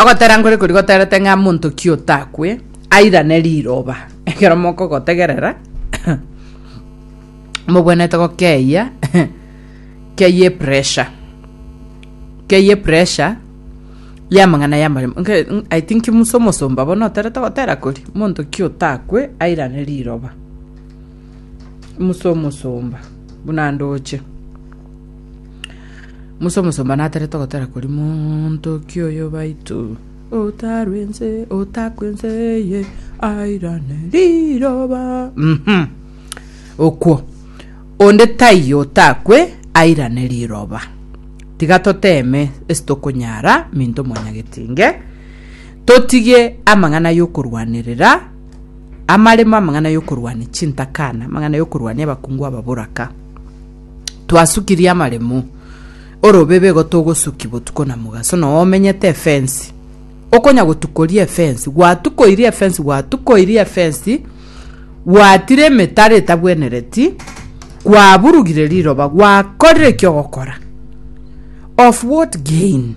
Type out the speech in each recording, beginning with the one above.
Ogotera nkore kori goterete ng'a monto ki otakwe airane riroba ekero mokogotegerera mobwenerete gokeyia keyie pressure keyie pressure y'amang'ana y'amaremo nke- n- I think Musa omosomba bono oterete gotera kori monto ki otakwe airane riroba Musa omosomba buna ndoche. Musa omosomba naterete ogotera koria Montoki oyo baito otarwe nse otakwe nse eye airane riroba Mhm. okwo onde taiyo otakwe airane riroba tiga toteme ase tokonyara minto mwanyagetinge totige amang'ana yokorwanerera amaremo amang'ana yokorwania chintakana amang'ana yokorwania abakungu ababoraka twasukirie amaremo orobebe igo togosuki botuko na mogaso no omenyete efensi okonya gotukoria efensi gwatukoirie efensi gwatukoirie efensi gwatire emetaro etabwenereti gwaburugire riroba gwakorire eki ogokora of what gain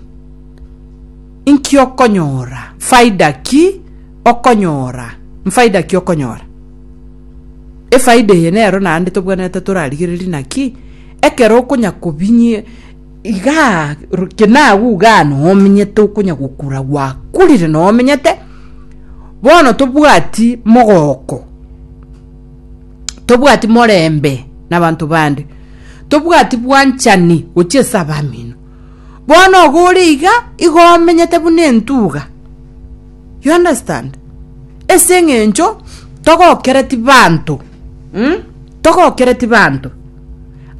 inki okonyora faida ki okonyora mfaida ki okonyora Efaida eye nero naende tobwenerete torarigererie naki, ekero okonya kobinyie igaa ru- kina agwo igaa noo omenyete okonya gokura gwakurire noo omenyete, bono tobwati mogooko, tobwati morembe na abanto bande, tobwati bwanchani gochia ase abamino. Bono iga ore iga, igo omenyete buna entuga. You understand? Ase eng'encho togokereti banto um, togokereti banto.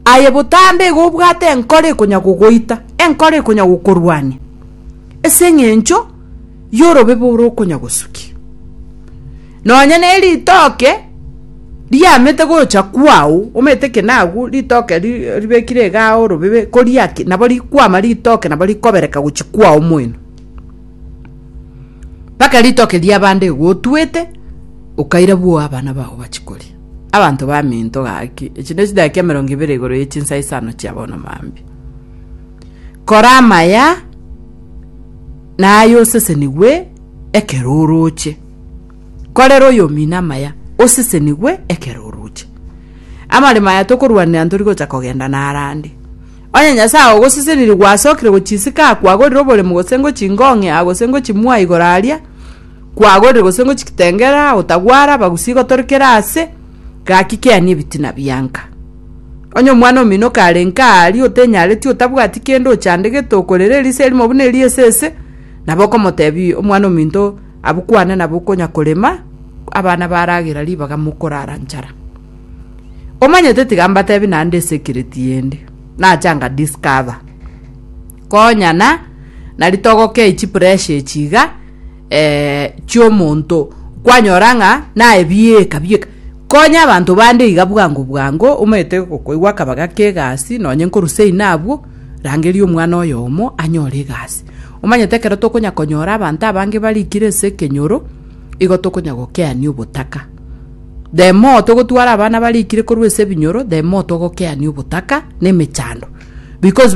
Aye botambe iga obwate enkoro ekonya gogoita, enkoro ekonya gokorwania, ase eng'encho yorobe bore okonya gosukia. Nonya ne ritoke riamete gocha kwao, omete ki nagwo, ritoke ri- ribekire igaa orobebe, koria ki, nabo rikwama ritoke nabo rikobereka gochi kwao moino. Mpaka ritoke ri'abande igo otwete, okaira bwoo abana bao bachie koria. Abanto baminto gaki, echi ne chidakika emerongo ibere igoro ye chinsa isano chia bono mambia. Kora amaya, na aye osesenigwe ekero oroche. Korera oyomino amaya, osesenigwe ekero oroche. Amaremo aya tokorwanera ntori gocha kogenda narande. Onye Nyasae ogoseseniri gwasokire gochiisika akwagorire oboremu gose ngochi ngong'e aa gose ngochi mua igoro aria kwagorire gose ngochi kitengere aa otagwara abagusi igotorekere aase, gaki kea nebitina bianka. Onye omwana omino okarenge aa aria otenyareti otabwati kende ochandegete okorera erisa erimo buna eria esese, nabo okomotebia omwana ominto abukwane nabo okonya korema abana baragera ribaga mokorara nchara. Omanyete tiga mbatebi naende esecret yende nacha nga discover konya na nari togokei chipressure echi iga eh, chiomonto kwanyora ng'a naye bieka bieka konya abanto bande iga bwango bwango omanyete gokoigwa akaba gake egasi nonye nkorusia inabwo rangeria omwana oyomo anyore egasi omanyete ekero tokonya konyora abanto abange barikire ase ekenyoro igo tokonya gokeani obotaka The more togotwara abana barikire korwa ase ebinyoro the more togokeania obotaka na emechando because.